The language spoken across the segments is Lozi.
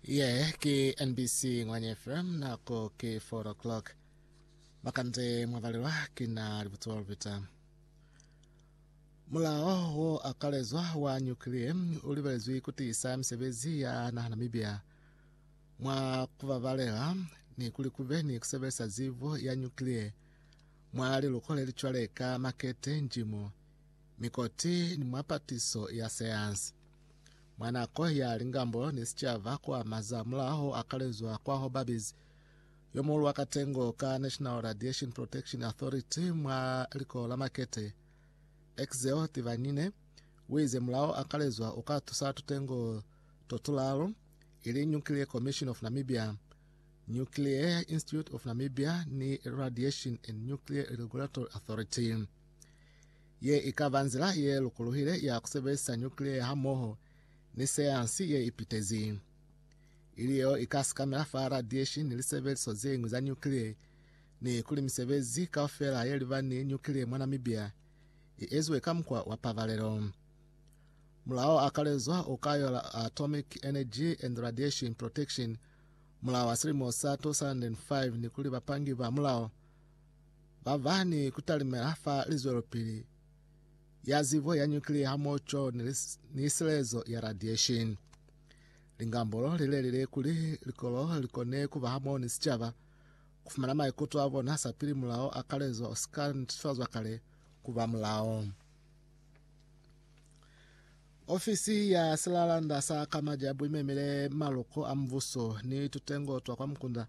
ye ke nbc ngwanye fm nako ke 4 o'clock bakante mwabalelwa ke na libutswa lupita mulao wo akalezwa wa nyukiliye u libelezwi kutiisa misebezi ya naha namibia mwa kubabalela ni kuli kube ni kusebelisa zibo ya nyukiliye mwa liluko lelicwale ka makete njimo mikoti ni mwa patiso ya sayansi Mwa nako ya lingambo ni sicaba kwa mazamulaho akalezwa kwa Hobabis, yo muhulu wa katengo ka National Radiation Protection Authority mwa liko la Makete, Exeo Tivanyine, wize mulao akalezwa uka tusa tutengo totulalu, ili Nuclear Commission of Namibia, Nuclear Institute of Namibia ni Radiation and Nuclear Regulatory Authority. Ye i ka ba nzila ye lokolohile ya ku sebelisa nyukliya hamoho ni sayansi ye ipitezi, ili yeo i ka sikamela fa radiation ni lisebeliso ze ñwi za nyukliya, ni kuli misebezi kaufela ye liba ni nyukliya mwa Namibia i eziwe ka mukwa wa pabalelo. Mulao a kalezwa o ka yola Atomic Energy and Radiation Protection, mulao wa silimo sa 2005 ni kuli bapangi ba mulao ba ba ni ku talimela fa lizwelopili ya zibo ya nyuklia hamoco ni silezo ya radiation. Lingambolo li lelile kuli likolo li kone ku ba hamoho ni sicaba ku fumana maikuto a bona sapili mulao a kalezo o si ka netifazwa kale ku ba mulao. Ofisi ya silalanda sa kamaja buimemile maluko a mubuso ni tutengo twa kwa mukunda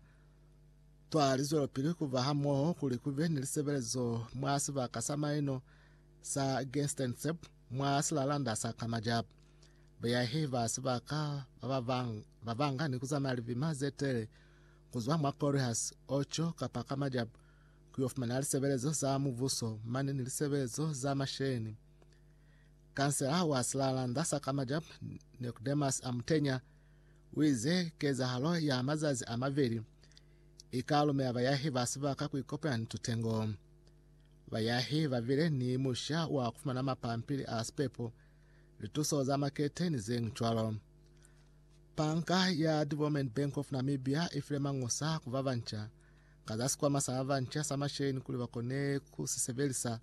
Cwale li zwelapili ku ba hamoho kuli ku be ni lisebelezo mwa sibaka sa maino sa Gestenseb mwa silalanda sa Kamajab. Bayahi ba sibaka ba babang ba banga ni ku zamaya libima ze tele ku zwa mwa Corihas, Ocho kapa Kamajab ku yo fumana lisebelezo za mubuso mane ni lisebelezo za masheni. Kansela wa silalanda sa Kamajab, Nicodemus Amutenya, U ize, Kezahalo ya mazazi a maveli i ka lumela bayahi ba sibaka ku ikopanya ni tutengo. Bayahi ba bile ni musha wa ku fumana mapampili a sipepo, lituso za makete ni ze ñwi cwalo. Banka ya Development Bank of Namibia i file mañusa ku ba banca ka za sikwama sa ba banca sa masheleni kuli ba kone ku si sebelisa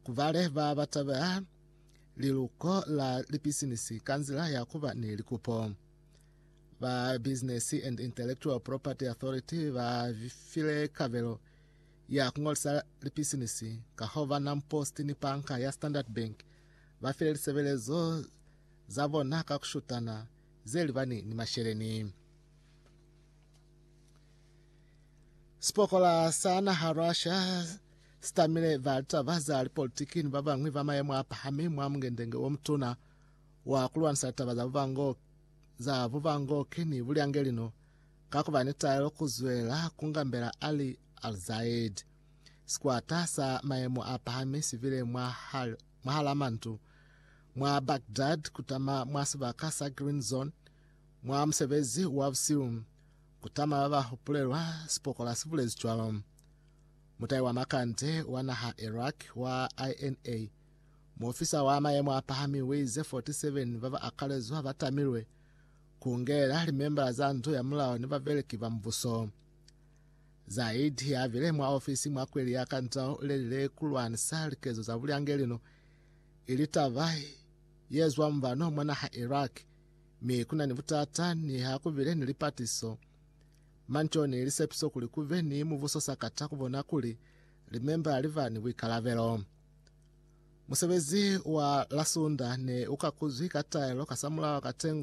ku bale ba ba tabela liluko la lipisinisi ka nzila ya ku ba ni likupo. Ba Business and Intellectual Property Authority ba file kabelo ya ku ngolisa lipisinisi ka ho ba Nam Post ni panka ya Standard Bank ba file lisebelezo za bona ka ku shutana ze libani ni masheleni. Sipokola sa naha Russia sitamile ba litaba za lipolitiki ni ba bañwi ba mayemo a pahami mwa mungendenge o mutuna wa ku lwanisa litaba za bubangoki, za bubangoki ni bulyangeli no ka ku ba ni taelo ku zwela ku ngambela Ali Al-Zaid. Sikwata sa mayemo a pahami si bile mwa hal, mwahala mantu mwa Baghdad ku tama mwa sibaka sa Green Zone mwa musebezi wa busihu, ku tama ba ba hupulelwa, sipokola si bulezi cwalo. Mutai wa makande wa naha Iraq wa INA, muofisa wa mayemo a pahami uize 47 ba ba akalezwa ba tamilwe, ku ungelela limembala za ndu ya mulao ni babeleki ba mubuso. Zaid ya bile mwa ofisi mwa kweli ya kantao u lelile ku lwanisa likezo za bulyangelino i li taba ye zwa mubano mwa naha Iraq, mi ku na ni butata niha ku bile ni lipatiso Manco ni lisepiso kuli ku be ni mubuso sa kata ku bona kuli limemba li ba ni buikalabelo. Musebezi wa la Sunda ne u kakuzwi ka taelo kasamulaho katengo